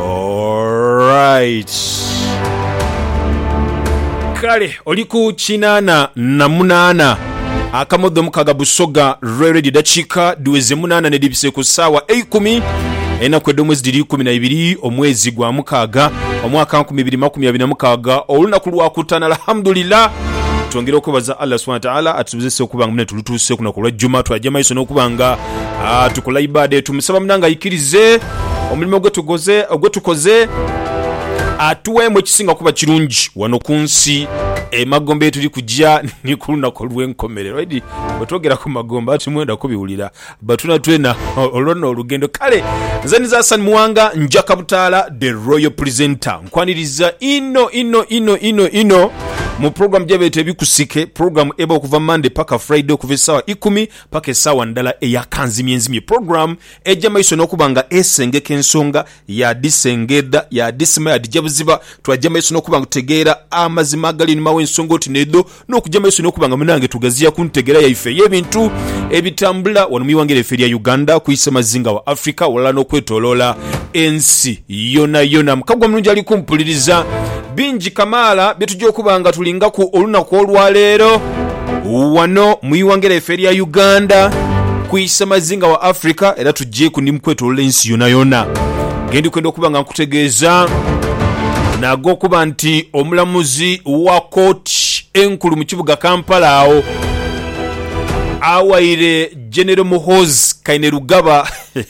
Alright. Kale oli ku kinaana na munaana akamodo omukaga Busoga Royal Radio dakiika dhiweze munaana nedhibise ku saawa eikumi enaku edh'omwezi dhiri ikumi na ibiri omwezi gwa mukaaga omwaka nkumi ibiri makumi abiri na mukaaga olunaku lwakutaano alhamdulillah twongera okwebaza Allah subhana taala atusobozese okuba nga mune tulutuuse kunaku olwa juma twaja maiso n'okuba nga Ah, tukola ibada etu musaba munange aikirize omulimo gwetukoze ogwetukoze atuweemu ekisinga kuba kirungi wano ku nsi emagombe yetuli kugya ni ku lunaku olw'enkomerero edi bwetwogera ku magombe ati mwenda kubiwulira batuna twena olwona olugendo kale nze niza Hassan Muwanga njaka butaala the royal presenter nkwaniriza ino ino ino ino ino mu program gyebeeta ebikusike program eba okuva Monday paka Friday okuva esaawa ikumi paka esaawa ndala eya kanzimyenzimye, program eja maiso nokuba nga esengeka ensonga yadhisengeedha, yadhisima, yadhija buziba, twaja maiso nokuba nga tutegeera amazima agali einhuma w'ensonga oti n'edho, nokuja maiso nokuba nga munange tugaziya ku ntegera yaife ey'ebintu ebitambula wano mwighanga lyaife erya Uganda ku isemazinga wa Africa ghalala nokwetoloola ensi yonayona. Mukagwa mulungi ali kumpuliriza. Bingi kamaala bye tugya okuba nga tulingaku olunaku olwa leero wano mu ighanga lyaife erya Uganda, ku isamazinga wa Africa era tugyeku ni mu kwetolola ensi yonayona ge ndi kwenda okuba nga nkutegeeza n'ag'okuba nti omulamuzi wa kooti enkulu mu kibuga Kampala agho awaire Genero Muhoozi Kainerugaba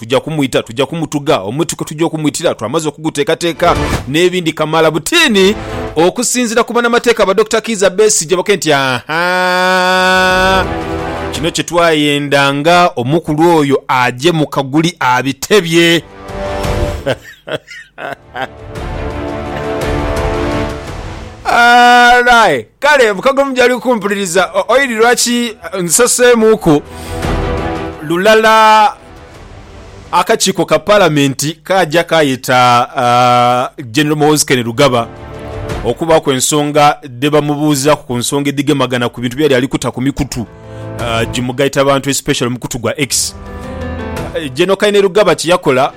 Tuja kumwita, tuja kumutuga omuti kwe tuja okumwitira twamaze okuguteekateeka n'ebindi kamaala butiini okusinziira ku banamateeka ba Dokita Kiiza Besigye bakoe nti ahaa kino kye twayenda nga omukulu oyo aje mu kaguli abitebye. Aye kale mukago mujali kukumpuliriza oili lwaki nziseseemuuku lulala akakiiko ka Palamenti kaaja kaayeta Genero Muhoozi Kainerugaba okubaaku ensonga dhe bamubuuzaaku ku nsonga edhigemagana ku bintu byeyali ali kuta ku mikutu gimugaita bantu especially omukutu gwa X. Gen Kainerugaba kye yakola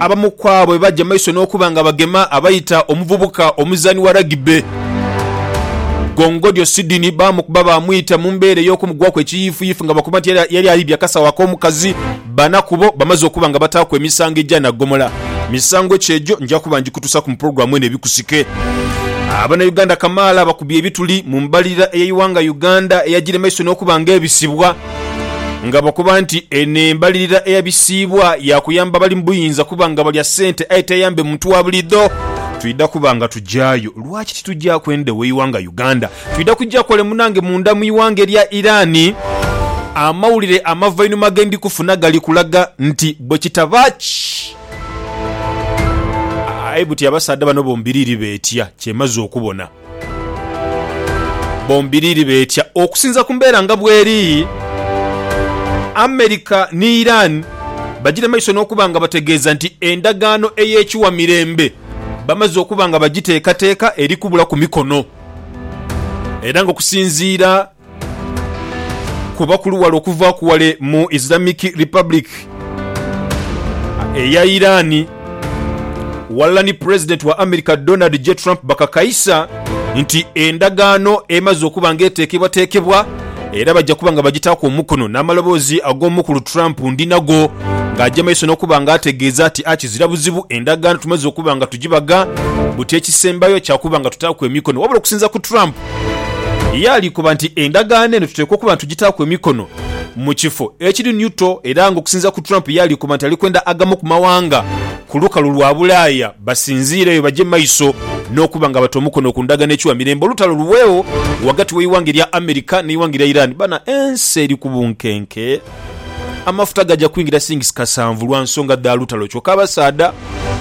Abamu ku abo bebaja maiso n'okuba nga bagema abaita omuvubuka omuzaani wa Rugby, Gongodyo Sydney baamukuba baamwita mu mbeera ey'okumugwaku ekiyiifuyiifu nga bakoba nti era yali aidhye akasawo ak'omukazi bana kubo bamaze okuba nga bataaku emisango egya naggomola. Misango ki egyo? Nja kuba ngikutuusaaku mu pulogulaamu eno ebikusike. Abanayuganda kamaala bakubye ebituli mu mbalirira ey'eighanga Uganda eyajire maiso n'okuba nga ebisibwa. Ng'abakoba nti eno embalirira eya bisiibwa ya kuyamba abali mu buyinza kuba nga balya sente aye teyambe muntu wa bulidho. Twidha kuba nga tugyayo. Lwaki titugyaku endhowo eighanga Uganda? Twidha kugya kole munange munda mu ighanga erya Iran. Amawulire amavainhuma ge ndi kufuna gali kulaga nti bwe kitaba ki. Aye buti abasaadha bano bombiriri beetya kyemaze okubona. Bombiriri beetya okusinza ku mbeera nga bweri. America ni Iran bagira maiso n'okuba nga bategeeza nti endagaano ey'ekiwa mirembe bamaze okuba nga bagiteekateeka eri kubulaku mikono era nga okusinziira Kuba ku luwala okuvaaku wale mu Islamic Republic eya Iran walala ni Pulezidenti wa America Donald J Trump bakakaisa nti endagaano emaze okuba nga eteekebwateekebwa era bajja kuba nga bagitaaku omukono n'amaloboozi ag'omukulu Trump ndinago ng'aja maiso n'okuba nga ategeeza ati akizira buzibu endagaano tumaze okuba nga tugibaga buti ekisembayo kyakuba nga tutaaku emikono wabula okusinza ku Trump Ye alikoba nti endagaano eno tuteekwa okuba nitugitaaku emikono mu kifo ekiri niuto era nga okusinziira ku Trump ye alikoba nti alikwenda agamu ku mawanga ku lukalu lwa Bulaaya basinziireyo baje maiso n'okuba nga bata omukono ku ndagaano ekiwa mirembe olutalo luweegho ghagati w'eighanga erya America n'eighanga erya Iran. Bana ensi eri ku bunkenke. Amafuta gaja kwingira sings kasanvu lwa nsonga dha lutalo kyoka abasaadha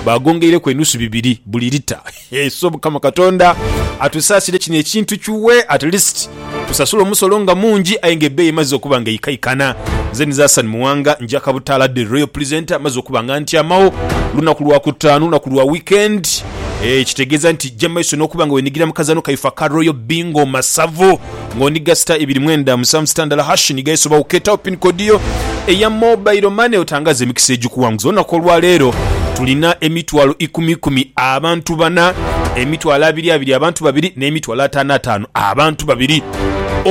bagongeireku enusu bibiri buli lita. Eiso mukama katonda atusasire kino ekintu kiwe at least tusasule omusolo nga mungi aye nga ebeeyi emaze okuba nga eikaikana nze nize Hassan Muwanga njaka butaala the royal presenter maze okuba nga ntyamagho lunaku lwa kutaanu lunaku lwa weekend eeh kitegeeza nti jja maiso nokuba nga wenigira mukazano kaife aka royal bingo masavu. Nga ni gasita ibiri mwenda musanvu sita ndala hash ni ga esobawo ketawo pin code yo eya mobile money otangaze emikisa egikuwanguza olunaku olwa leero tulina emitwalo ikumi ikumi abantu bana emitwalo abiri abiri abantu babiri ne mitwalo atano atano abantu babiri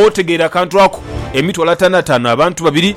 otegeera akantu ako emitwalo atano atano abantu babiri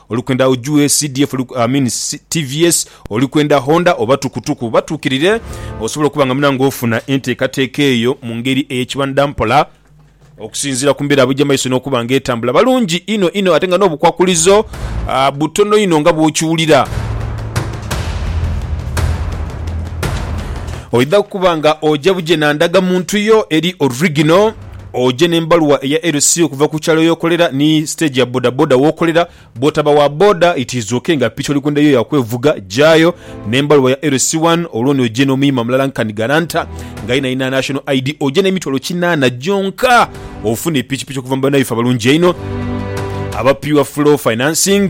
Oli kwenda ujue CDF oli, I mean TVS, oli kwenda Honda oba tukutuku? Batuukirire osobola okuba nga munange ofuna enteekateeka eyo mu ngeri ey'ekibanda mpola okusinziira ku mbeera bw'eija mu maiso n'okuba nga etambula. Balungi inho inho ate nga n'obukwakulizo butono inho nga bw'okiwulira. Oidha kuba nga oja buje na ndagamuntu yo eri original. oje n'embaluwa eya LC okuva ku kyalo y'okolera ni siteegi ya bodaboda w'okolera. Bw'otaba wa boda, itiizuuke nga piki oli kwenda yo ya kwevuga, jaayo n'embaluwa ya LC wano olwo ni oje n'omuyima mulala nkani garanta nga yeenayina National ID. Oje n'emitwalo kinaana gyonka ofune pikipiki okuva mu bannabyaffe abalungi einho aba Pure Flow Financing.